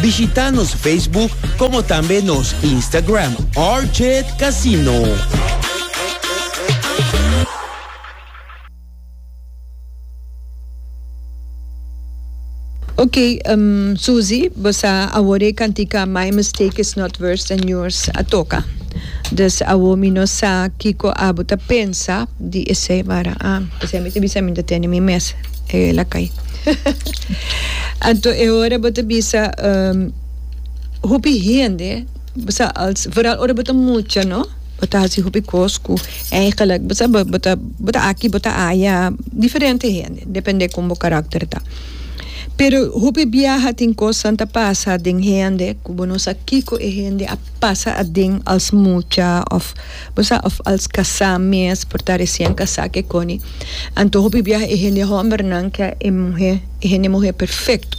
Bishita nos Facebook como tambe nos Instagram RJ Casino. Ok, um, Suzy, vos a awore cantica My Mistake is Not Worse Than Yours a toca. Dus awo mi no sa kiko abo ta pensa di ese, mara ah, ese mi te bisa mi te tene mi mes. E la cay. Anto e ora bo ta bisa um, hopi hende, bo sa als, vooral ora bo ta mucha no, bo ta hasi hopi cos cu eigenlijk, bo sa, bo ta, bo ta aki, bo ta aya, diferente hende, depende con bo karakter ta. Pero hopi biaha tin cosnan ta pasa den hende cu bo no sa kico e hende a pasa aden als mucha of. Bo sa of als kasá mes por ta resien kasá ke koni. Anto hopi biaha e hende hòmbernan kè e muhé, e hende muhé perfekto.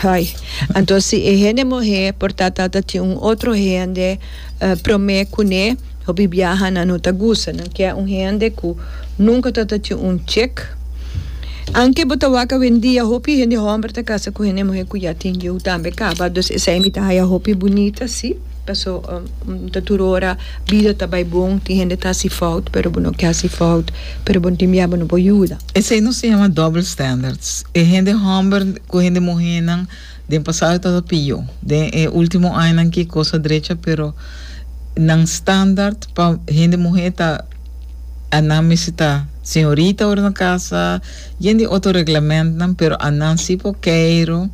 Ai, anto si e hende muhé por ta ta ta tin un otro hende promé kuné, hopi biaha nan no ta gusta. Nan kè un hende ku nunka ta ta tin un chek. Anke bo ta wak awendia, hopi hende hòmber ta kasa ku hende muhé ku ya tin yiu tambe kaba. Dus esei mi ta haya hopi bunita, sí. Paso N ta tur ora, bida ta bai bon, tin hende ta hasi fout, pero bo no ke hasi fout, pero bo tin bia bo no por yuda. Esei nos ta yama double standards. E hende homber ku hende muhénan den pasado tabata pió. Den e último añanan akí kos a drecha, pero nan standard pa hende muhé ta anan mester ta señorita ora nan kasa, yen di otro reglamentnan, pero anan sí por keiro,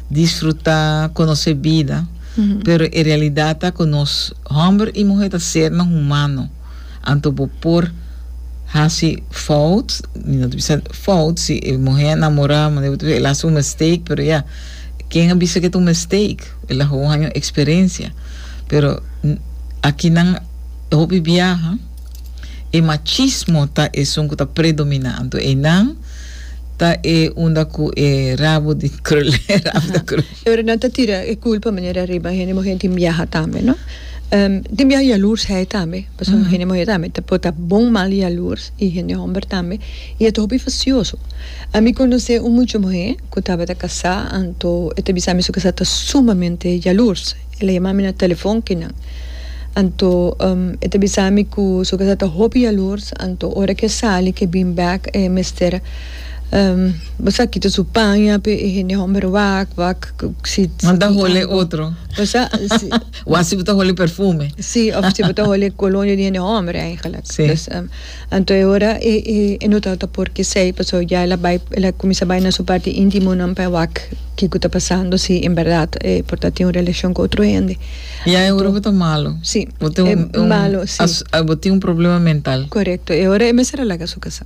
disfrutá, konosé bida. Pero e realidad ta cu nos homber y muher ta sernan humano, anto bo por haci fout, mi no ta bisa fout, si e muher a namora manera bo ta bisa el a haci un mistake, pero ya, ken a bisa cu e ta un mistake? El a haña un experiencia. Pero aki nan hopi biaha e machismo ta esun cu ta predomina, anto eynan ta e unda cu e rabo di krul, e rabo ta krul. Pero nan ta tira e culpa manera ariba hende muhé tin biaha tambe no tin biaha yalurs hei tambe pasobra uh-huh. hende muhé tambe ta po ta bon mal yalurs y hende homber tambe y e ta hopi facioso a mi conoce un mucho muhé cu tabata casá anto e ta bisa mi su casá ta sumamente yalurs el a yama mi na telefon kinan anto um, e ta bisa mi cu su casá ta hopi yalurs anto ora ke sali ke bin back e mester Basa kita su paña p'e e hende hòmber wak, wak, si, si. Manda holi e otro. Basa, si. Wak si bo ta holi perfume. Si, òf si bo ta holi e kolonia di hende hòmber eingelek. Si. Dus, anto e ora e, e, e no tabata por k'esei, paso ya el a bai, el a kuminsá bai na su parti intimonan pa e wak kiko ta pasando, si en bèrdat e por ta tin un relashon ku otro hende. Ya e ora bo ta malu. Si, e malo, si. Bo tin un problema mental. Korekto. E ora e mester a laga su kasá.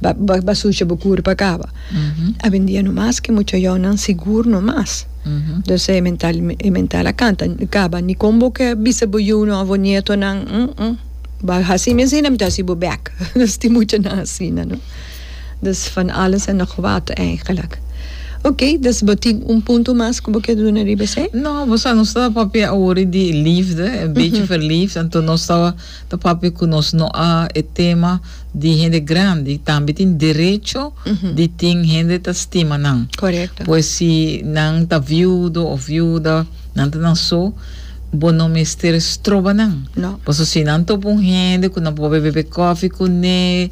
Ba sucia bo cura pa caba. Awendia no mas ke mucha yonan sigur no mas. Entonces e mental e mental a canta caba ni con bo ke bisa bo yunan of bo nietonan umm ba hasi mi asina mi ta hasi bo bek nos tin mucha nan asina no dus van alles en nog wat eigenlijk. Ok dus bo tin un punto mas cu bo kier duna riba esey? No, bo sa nos ta papia awor di liefde, e bechi verliefd, anto nos ta. Ta papia cu nos no a e tema di hende grandi tambe tin derecho di tin hende ta stima nan. Correcto. Pues si nan ta viudo of viuda, nan ta na so, bo no mester stroba nan. No. Paso si nan topa un hende cu nan por be bebe coffee cu ne,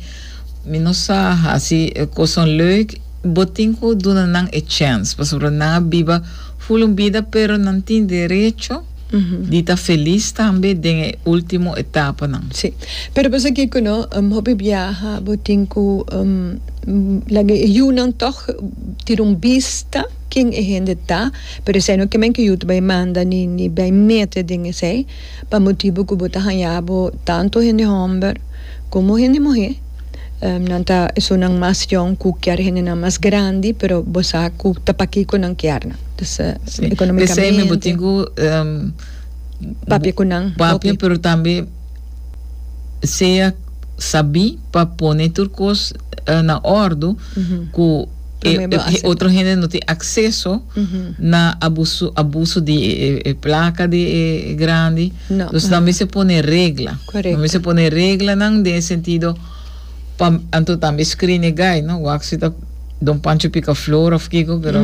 mi no sa, haci coson leuk, bo tin cu duna nan e chance. Pasobra nan a biba full un bida pero nan tin derecho. di ta felis tambe den e ultimo etapanan. Sí. Pero pasa ke ku no, hopi biaha bo tin ku laga e yunan tog tira un bista ken e hende ta, pero esei no kimen ke yu ta bai manda ni ni bai mete den esei pa motibu ku bo ta haña bo tantu hende homber komo hende muhé. Nan ta esunnan mas young cu kier hendenan mas grandi, pero bo sa cu ta paki cu nan kier nan. Dus, economicamente. P'esey mi bo tin cu papia cu nan hopi. Papia, pero tambe sea sabi pa pone tur cos na ordu cu e otro hende no tin acceso na abuso di e placa di e grandi. Nos nan mester pone regla. Correcto. Nan mester pone reglanan den e sentido pa anto tambe screen e guy, no? Wak si ta Don Pancho Picaflor of kico, pero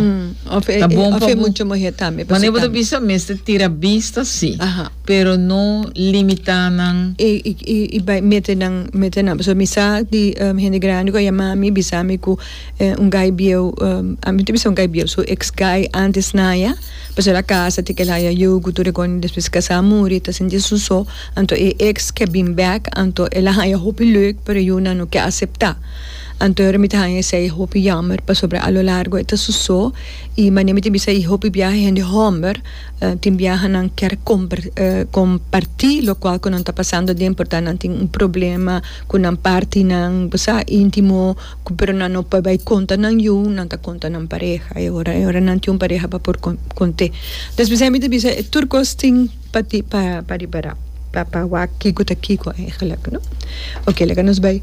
Of e, ta bon of pa e bo. mucha muher tambe, Mane pasobra bo ta tambe. bisa mester tira bista si, Aha. pero no limita nan. E, i, i, i bai mete nan, mete nan. Pasobra mi sa di em hende grandi cu a yama mi, bisa mi cu. Eh, un gai bieu, eh, mi ta bisa un gai bieu, su ex gai antes Naya, pasobra el a casa, tin kel haya yugu, tur e kònen, despues e kasá a muri, e ta sinti asun so, anto e ex ke bin bèk, anto el a haya hopi luk, pero Yuna no ke aseptá. Anto ora mi ta haña esei hopi yammer, pasobra a lo largo e ta asun so, i manera mi ta bisa i hopi biaha hende hòmber, eh, tin biahanan ker komber, eh, kompartí lokual ku nan ta pasando den, por ta nan tin un problema ku nan partinan, bo sa, íntimo. cu pero nan no por bay conta nan yu nan ta conta nan pareha e ora e ora nan tin un pareha pa por conte despues ahí mi ta bisa e tur cos tin pa tin pa ripara pa pa wak kico ta kico eigenlijk no oke laga nos bay.